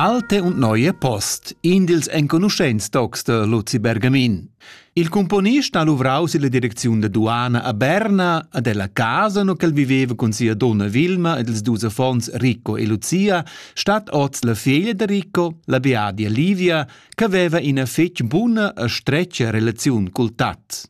Alte und neue Post, in dils enconuschents tocs de Luzi Bergamin. Il componist ha luvrau silla direcziun da duana a Berna a della casa no ch'el viveva cun sia donna Vilma ed ils dus affons Ricco e Lucia, stat oz la figlia de Ricco, la beadia Livia, che veva ina fetg buna e stretga relaziun cul tat.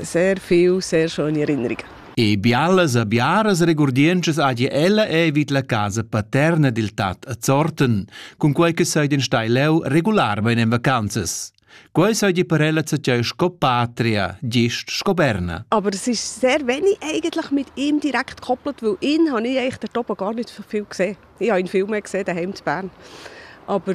Sehr viel, sehr schöne Erinnerungen. E bialas a biaras regurdientschas agi ella è vid la casa paterna dil tat a Zorten, cun quei che sei den stai leu regularmein en vacanzas. Quei sei die per ella zatjei sco patria, gist sco Berna. Aber es ist sehr wenig eigentlich mit ihm direkt gekoppelt, weil ihn habe ich eigentlich dort oben gar nicht so viel gesehen. Ich habe ihn viel mehr gesehen daheim in Bern. Aber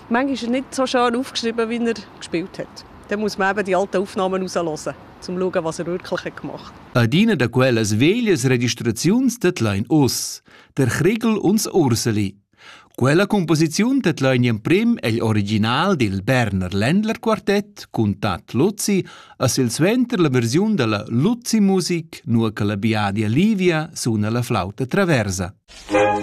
Manchmal ist er nicht so schön aufgeschrieben, wie er gespielt hat. Dann muss man eben die alten Aufnahmen rauslassen, um zu schauen, was er wirklich hat gemacht hat. Adina da quellas veglias registraziuns tedlain oz, der Kriegel uns Urseli. Quella composiziun tedlain emprim egl original dil Berner Ländlerquartett cun tat Luzi a silsuenter la versiun della Luzi Musik, nur che la Biadia Livia suna la flauta traversa. Musik